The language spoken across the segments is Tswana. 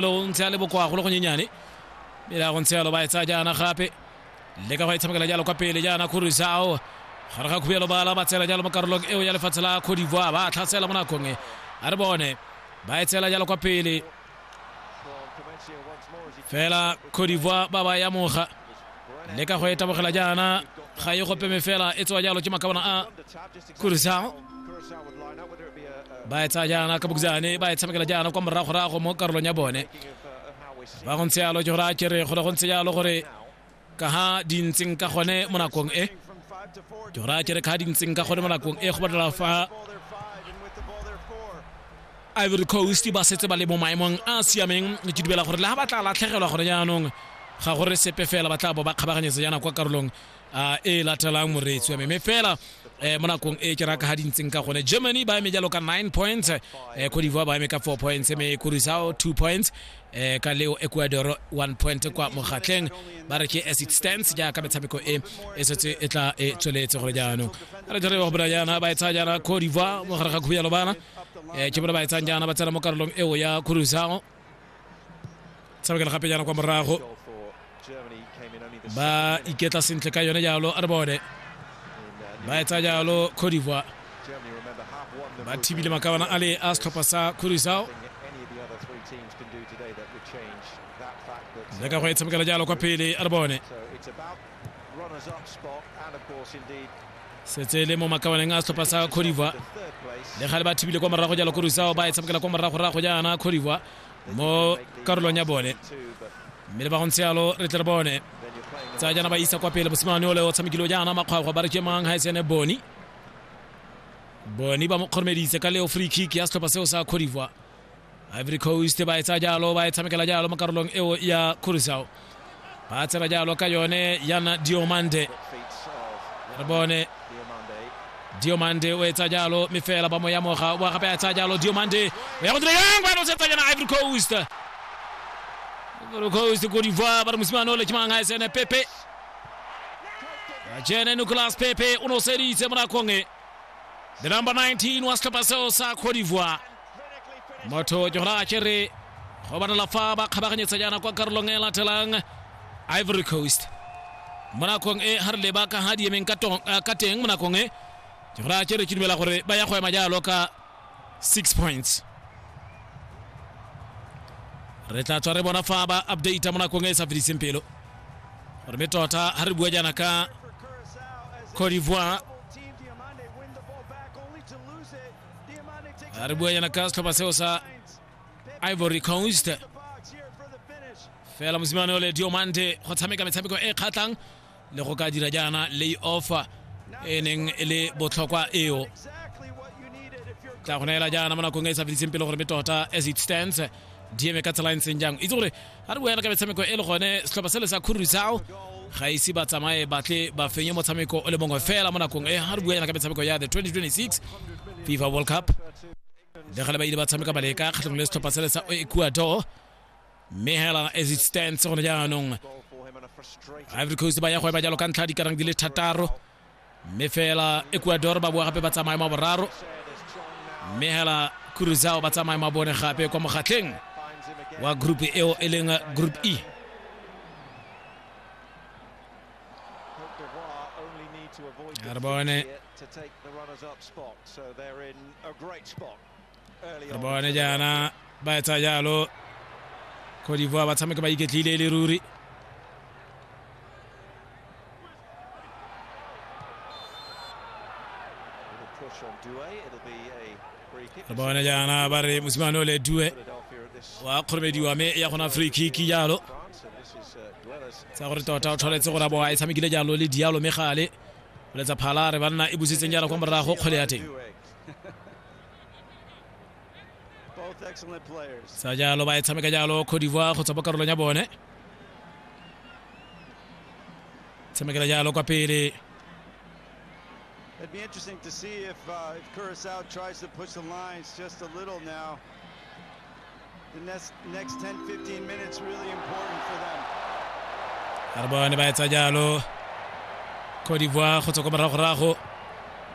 lo ntse a le bokoa go le gonyenyane mme le ya go ntse yalo ba e tsaya jaana gape le ka go e tshamekela jalo kwa pele jaana khurisao gare ga khubielo bala ba tsela jalo mo karolong eo ya lefatshe la cote d'ivoire ba tlhasela mo nakong e a re bone ba e tsela jalo kwa pele fela cote d'ivoire ba ba yamoga le ka go e tabogela jaana ga e gopeme fela e tsewa jalo ke makabana a Curaçao ba e tsaya jaana ka bokjane ba e tshamekela jaana kwa moragorago mo karolong ya bone ba go ntse yalo ke gore a kere gore go ntse yalo gore ka ha di ntseng ka gone mo nakong e ke gore a kere ka ha di ntseng ka gone mo nakong e go batlela fa ivory coast ba setse ba le mo maemong a a siameng ke dubela gore le ga ba tla latlhegelwa gone jaanong ga gore sepe fela ba tla bo ba kgabaganyetsa jaana kwa karolong a e latelang moreetsi wa me mme fela eh, mo nakong e ke raka ga di ntseng ka gone germany ba eme jalo ka 9 points eh, cote d'ivoire ba eme ka 4 points mme kurisao 2 points eh, ka leo ecuador 1 point kwa mogatleng ba re ke as it stands jaaka metshameko e e setse e tla e tsweletse gore jaanong a re jare ba gobela jaana ba e tsaya jaana cote d'ivoire mo gare ga khubi ya lobana eh, ke bone ba e tsayang jaana ba tsena mo karolong eo ya kurisao tshamekela gape jaana kwa morago ba iketla sentle ka yone jalo a re bone ba etsa jalo cote d'ivoire ba thibile makabana a le a setlhopha sa curacao le ka go e tshamekela jalo kwa pele a re bone setse le mo makabaneng a setlhopha sa codivoire le ga le ba thibile kwa morago jalo korusao ba e tshamekela kwa moragorago jaana codivoire mo karolong ya bone mme le ba go ntse yalo re tle re bone tsa jaana ba isa kwa pele mosimane ole o tshamekile jaana makgwakgwa ba re ke mang ga e sene boni boni ba mo kgoromeditse ka leo free kick ya setlhopha seo sa codivoire ivory coast ba etsa jalo ba e tshamekela jalo mo karolong eo ya curacao ba tsena jalo ka yone yana diomande re bone diomande o etsa jalo mme fela ba mo yamoga o gape a etsa jalo diomande o ya go dira yang ba nosetsa yana ivory coast ivory coast ko divoire ba re mosimane o le ke mang a esene pepe jene nicolas pepe o noseditse mo nakong e the number 19 wa setlhopha seo sa cote divoire motho ke gona a kere go banela fa ba kgabaganyetsa jaana kwa karolong e latelang ivory coast mo nakong e ga re leba ka ga di emeng ka tong- eh, ka teng mo nakong e ke gona a kere ke dumela gore ba ya go ema jalo ka six points re tla tswa re bona fa ba updata mo nakong e e sa fediseng pelo gore mme tota ga re bua jaana ka cote d'ivoire Anajaribu yeye na Castro Paseosa Ivory Coast. Fela mosimane ole Diomande go tshameka metshameko e kgatlhang le go ka dira jaana lay off e neng e le botlhokwa eo tla go neela jaana mo nakong e e sa fediseng pele gore mme tota as it stands dm ka tsela e ntseng jang itse gore a re boela ka metshameko e le gone setlhopha sele sa khururisao ga ise ba tsamaye batle ba fenye motshameko o le mongwe fela mo nakong e ga re buela ka metshameko ya the 2026 fifa world cup le gale ba ile ba tshameka baleka kgatlhong le setlhopha sele sa ecuador mme hela as it stands gone jaanong ivory coast ba ya go eba jalo ka ntlha dikarang di le thataro mme fela ecuador ba boa gape ba tsamaye ma boraro mme hela cruzao ba tsamaye ma bone gape kwa mogatlheng wa group eo e leng group e re bone re bone jaana ba etsa jalo cote d'ivoire ba tshameka ba iketlile e le ruri re bone jaana ba re mosimane o le due wa kgoromediwa mme ya gona free kick jalo tsa gore tota o tshwanetse gore a bo a e tshamekile jalo le dialo mme gale boletsa phala re banna e busitseng jalo kwa morago kgwele ya teng Both excellent players. sa jalo ba e tshameka jalo cote d'ivoire go tswa mo karolong ya bone tshamekela jalo kwa pele It'd be interesting to see if uh, if Curacao tries to push the lines just a little now. The next, next 10, 15 minutes really important for them. a re bone ba etsa jalo cote d'ivoire go tswa ko moragorago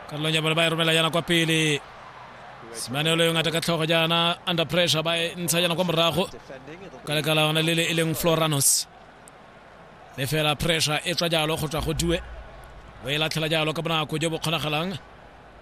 karolong ya bone ba e romela jaana kwa pele semanelo yo ngata ka tlhogo jaana under pressure ba e ntsha jaana kwa morago Defending, it'll ka leka la yone le le e leng floranos le fela pressure e tswa jalo go tswa go due o e latlhela jalo ka bonako jo bo kgonagalang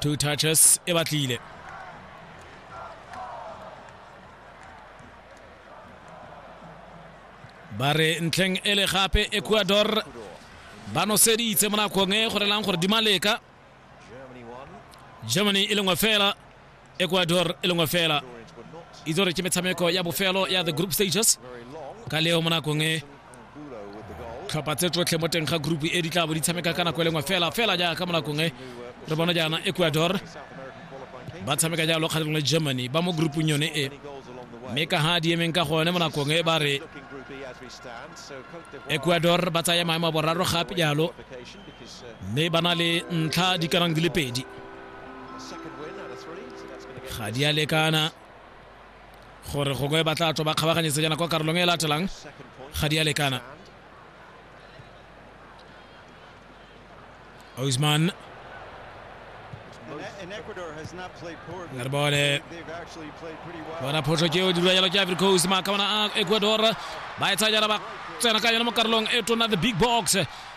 two touches e batlile ba re ntlheng e le gape ecuador ba noseditse mo nakong e go relang gore di maleka germany e lengwe fela ecuador e lengwe fela itse gore ke metshameko ya bofelo ya the group stages ka leo mo nakong e tlhopha tse tsotlhe mo teng ga group e di tla bo di tshameka ka nako e lengwe fela fela jaaka mo nakong e re bona jaana ecuador ba tshameka jalo kgatlhanong le germany ba mo groupong yone e mme ka ga di emeng ka gone mo nakong e ba re ecuador ba tsaya maemo a boraro gape jalo mme ba na le ntlha di kanang di le pedi ga di a lekana gore gongwe ba tla tswa ba kgabaganyetse jana kwa karolong e latelang ga di a lekana Ousmane re bone bona phoso ke o dira jalo ke Ivory Coast maakabana a Ecuador ba e tsaya jana ba tsena ka yone mo karolong e tona the big box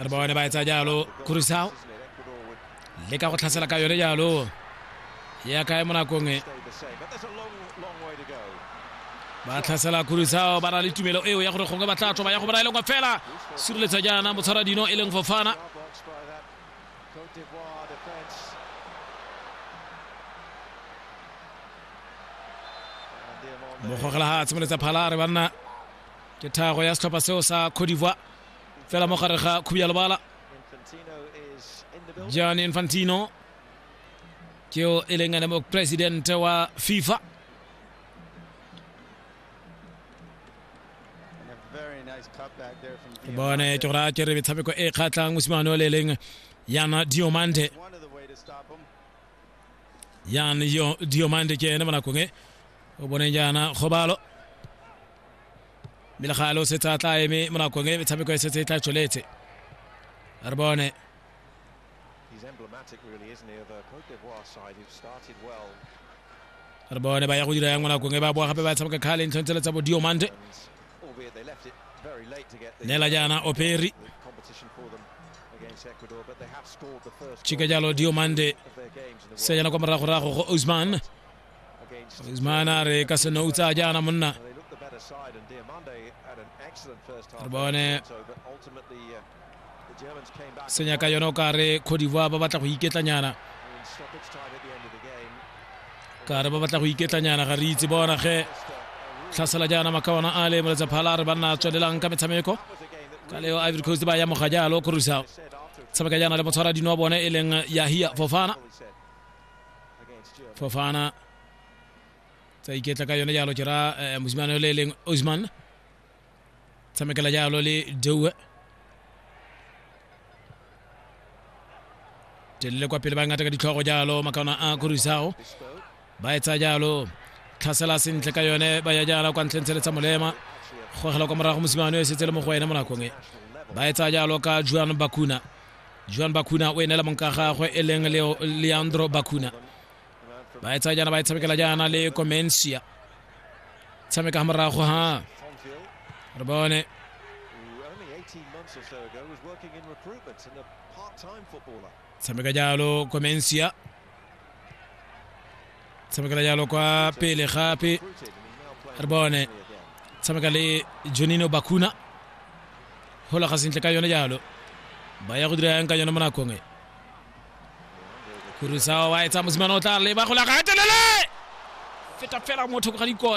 re ba bone ba etsa jalo kurisao le ka go tlhasela ka yone jalo ya kae mo nakong e ba tlhasela kurisao ba na le tumelo eo ya gore gongwe ba tla tloba ya go bona e leng kwa fela sireletsa jaana motshwara dino e leng fofana mogogela ga a tshimoletsa phala re banna ke thago ya setlhopha seo sa codivoire fela mo gare ga khubi ya lebala john infantino ke yo e leng ene mopresidente wa fifa ke bone ke go raya ke re metshameko e kgatlhang mosimane o le leng yana diomande yan diomande ke ene mo nakong e o boneng jaana kgobalo mme le ga lo setse a tla eme mo nakong e metshameko e setse e tla tsweletse re bone re bone ba ya go dira yang mo nakong e ba boa gape ba tshameka kgale ntlhong tsele tsa bodiomante neela jaana operi chika jalo diomande se jana kwa moragorago go osman Usman are kasa na uta jana munna bone senya ka yona o kare Cote d'Ivoire ba batla go iketlanyana kare ba batla go iketlanyana ga re itse bona ge tlhasela jana makawana a le moletsa phala re banna tswelelang ka metshameko ka leo ivory coast ba ya moga jalo korusao tshameka jana le motshwara dino bone e leng yahia fofana fofana tsa iketla ka yone jalo jera eh, mosimane yo le e leng osman tshamekela jalo le deue telele kwa pele ba ngata ka ditlhogo jalo makaona a korisago ba etsa jalo tlhasela sentle ka yone ba ya jala kwa ntleng tsheletsa molema gogela kwa morago mosimane yo e setse le mo go ene mo nakong e ba etsa jalo ka juan bakuna joan bakuna o enela monka gagwe e leng leandro bakuna ba e tsaya jaana ba e tshamekela jaana le comensia tshameka ga morago ha re bone tshameka jalo comensia tshamekela jalo kwa pele gape re bone tshameka le jonino bakuna golaga sentle ka yone jalo ba ya go dira yang ka yone mo nakong e kurusa wa etsa mosimane o tla leba golaga telele feta fela motho ga dikota